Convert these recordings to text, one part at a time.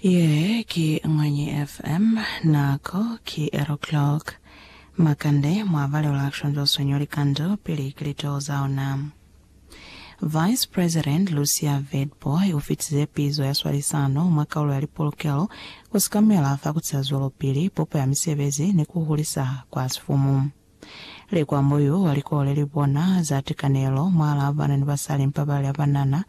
Ye ki Ñwanyi FM. Nako ki eri o'clock. Makande, mwa balelwa shonzwa sonyo likandu pili ki litoho za ona. Vice President Lucia Vedboy u fitize pizo ya swalisano mwa kaulo ya lipolokelo ku sikamela fa ku tiza zwelopili, popo ya misebezi ni ku hulisa kwa sifumu. Likwambo yu wa likole li bona za tikanelo mwaalaa ba banani ba sa li mpabali ya banana,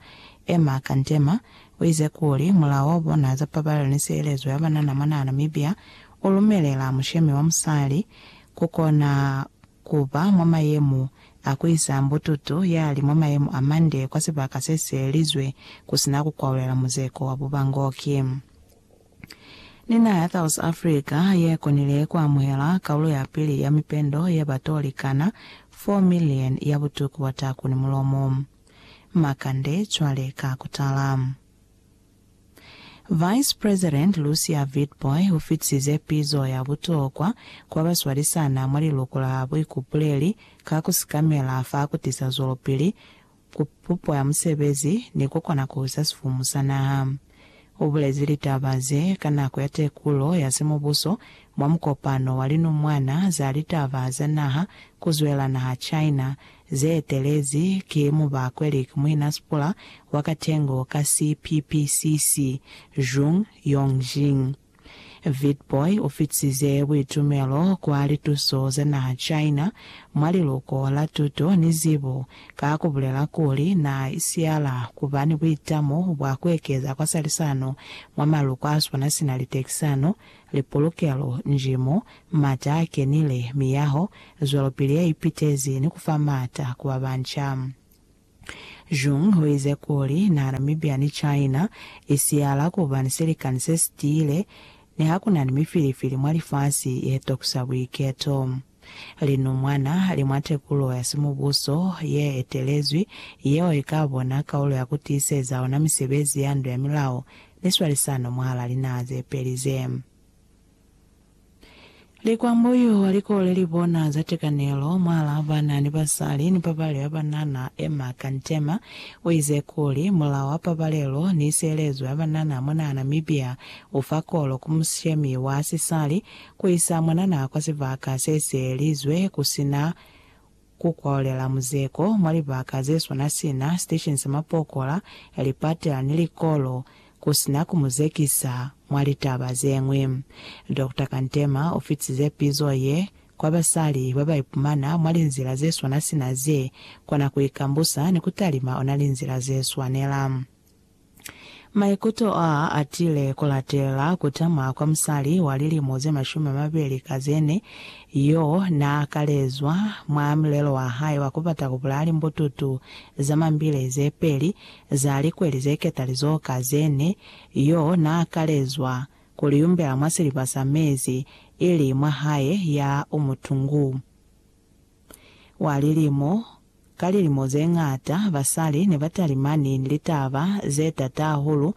Emma Kantema, u ize kuli, Mulao wa bona za pabalelo ni sielezo ya banana mwa naha Namibia u lumelela mushemi wa musali ku kona ku ba mwa mayemu a ku isa mbututu ya li mwa mayemu a mande kwa sibaka se sielelizwe ku si na ku kwaulela muzeko wa bubangoki. Ni naha ya South Africa ye konile ku amuhela kaulo ya pili ya mipendo ye ba t'o likana 4 million ya butuku bwa taku ni mulomo. Makande cwale ka ku tala. Vice President Lucia Witbooi u fitisize pizo ya butokwa ku ba ba swalisana mwa liluko la buikupuleli ka ku sikamela fa ku tisa zwelopili ku pupo ya musebezi ni ku kona ku uza sifumu sa naha. U bulezi litaba ze ka nako ya tekulo ya simubuso mwa mukopano wa linumwana za litaba za naha ku zwela naha China, ze etelezi ki Mubakwelik Muinasipula wa Katengo ka CPPCC, Zhong Yongjing. Vitbooi u fitize buitumelo kwa lituso za naha China mwa liluko la tuto ni zibo ka ku bulela kuli na isiyala ku ba ni buitamo bwa ku ekeza kwasalisano mwa maluko a swana sina litekisano, lipulukelo, njimo, mata a kenile, miyaho, zwelopili ye ipitezi ni ku fa maata ku ba banca. Zhong uize kuli na Namibia ni China i siyala kuba ni silikani se si tiile ni ha ku na ni mifilifili mwa lifasi ye tokusa buiketo. Linumwana li mwa tekulo ya simubuso ye etelezwi yeo i ka bona kaulo ya ku tiiseza ona misebezi ya ndu ya milao ni swalisano mwahal'a linaha ze peli ze. Likwambo yo wa likole li bona za tekanelo mwa la ba na ni basali ni pabali ya banana, Emma Kantema, u ize kuli, Mulao wa pabalelo ni sielezo ya banana mona Namibia u fa kolo ku mushemi wa sisali ku isa mwanana kwa sibaka se sielizwe ku si na Ku kwalulela muzeko mwa libaka ze swana sina sitesheni sa mapokola, lipatela ni likolo, ku sina ku mu zekisa. Mwa litaba ze ñwi, Dokta Kantema u fitize pizo ye kwa basali ba ba ipumana mwa linzila ze swana sina ze kona ku ikambusa ni ku talima ona linzila ze swanela. Maikuto aa atile kulatela kutama kwa musali wa lilimo ze mashumi amabeli ka zene yo naa kalezwa mwa mulelo wa hae wa kubata kubulaya limbututu za mambile ze peli za likweli ze ketalizo ka zene yo naa kalezwa kuliumbela mwa siliba sa mezi ili mwa hae ya umutungu. Wa lilimo ka lilimo ze ñata, basali ne ba talimani ni litaba ze t'ata hahulu,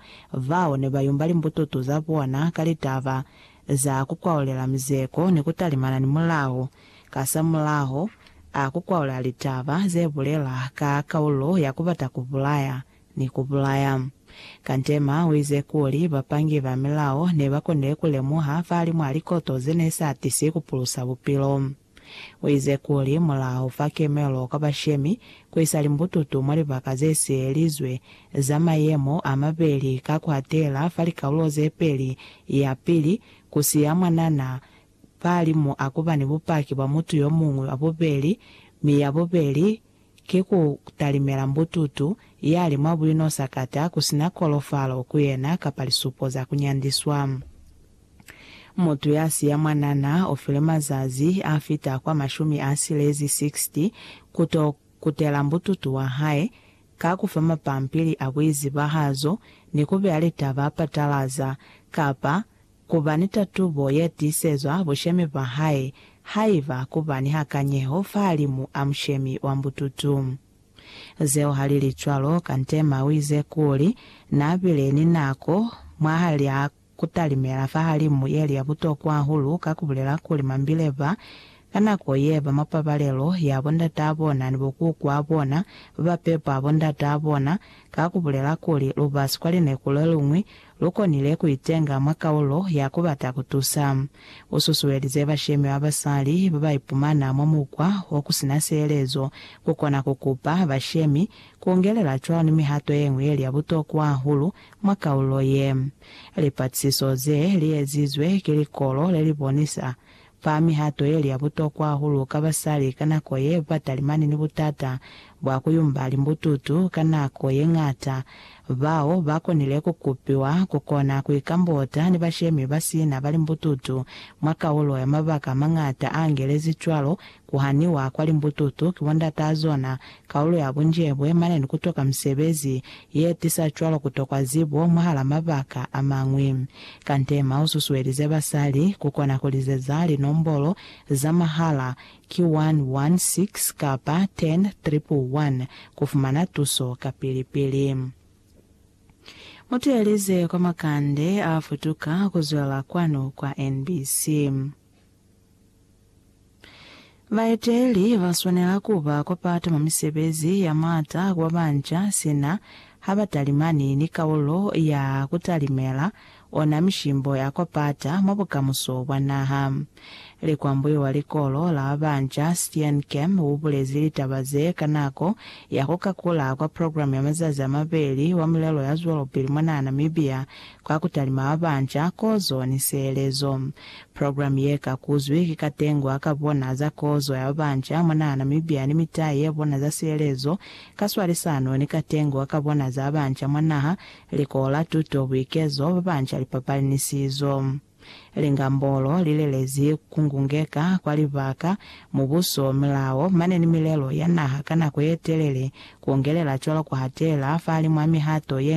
bao ne ba yumba limbututu za bona ka litaba za ku kwaulela mizeko ni ku talimana ni mulao. Kasamulaho, a ku kwaula litaba ze bulela ka kaulo ya ku bata ku bulaya ni ku bulaya. Kantema u ize kuli bapangi ba milao ne ba konile ku lemuha fa limwa likoto ze ne sa tisi ku pulusa bupilo. Uize kuli, Mulaho fa kemelo kwa bashemi, kuisa limbututu mwa libaka zesielizwe za mayemo amabeli ka kuatela fa likalulo zepeli, yapili, kusiya mwanana pahalimu akuba ni bupaki bwa mutu yomuñwi wa bubeli, mi yabubeli ki ku talimela mbututu ya li mwa buino sakata ku si na kolofalo ku yena kapa lisupo za ku nyandiswa. Mutu ya siya mwanana o filwe mazazi a fita kwa mashumi a silezi, 60, ku to kutela mbututu wa hae ka ku fa mapampili a buizibahazo ni ku beya litaba patalaza kapa Ku ba ni tatubo ye tiisezwa bushemi bwa hae haiba ku ba ni hakanyeho fahalimu a mushemi wa mbututu. Zeo ha li li cwalo, Kantema u ize kuli, Na bile ni nako mwahal'a ku talimela fahalimu ye li ya butokwa hahulu ka ku bulela kuli mambile ba ka nako ye ba mwa pabalelo ya bo ndataa bona ni bo kukuaa bona ba ba pepa bo ndataa bona, ka ku bulela kuli, Lu ba sikwalineko le luñwi, Lu konile ku itenga mwa kaulo ya ku bata ku tusa. U susuelize bashemi ba basali ba ba ipumana mwa mukwa o ku si na sielezo ku kona ku kupa bashemi ku ungelela cwalo ni mihato ye ñwi ye li ya butokwa hahulu mwa kaulo ye. Lipatisiso ze li ezizwe ki likolo le li bonisa Fa mihato ye li ya butokwa hahulu ka basali ka nako ye ba talimani ni butata bwa ku yumba limbututu ka nako ye ñata. Bao ba konile ku kupiwa ku kona ku ikambota ni bashemi ba sina ba limbututu mwa kaulo ya mabaka a mañata a angelezi cwalo ku haniwa kwa limbututu ki bondatazona Kaulo ya bunjebwe mane ni kutoka misebezi ye tisa cwalo kutokwa zibo mwahala mabaka a mañwi. Kante ma u susuelize basali ku kona ku lizeza linombolo za mahala ki 116 kapa 10111 ku fumana tuso kapili pili. Mu teeleze kwa makande a futuka ku zwelela kwanu kwa NBC. Baeteli ba swanela ku ba kwa pata mwa misebezi ya m'ata ku babanja sina ha ba talimani ni kaulo ya ku talimela ona mishimbo ya kwa pata mwa bukamuso bwa naha. Likwambuyo wa likolo la babanja Steenkamp u bulezi litaba ze ka nako ya ku kakula kwa programe ya mazazi a mabeli wa milelo ya zwelopili mwanaa Namibia Ka ku talima abanca, kozo, ni sielezo. Program ye ka kuzwi ki katengwa ka bona za kozo ya babanca mwa naha Namibia ni mitai ya bona za sielezo, ka swalisano ni katengwa ka bona za abanca mwa naha, likola, tuto, buikezo, babanca, lipapali ni sizo. Lingambolo li lelezi ku ngungeka kwa libaka, mubuso, milao, mane ni milelo ya naha ka nako ye telele, ku ongelela cwalo ku hatela fahalimwaa mihato ye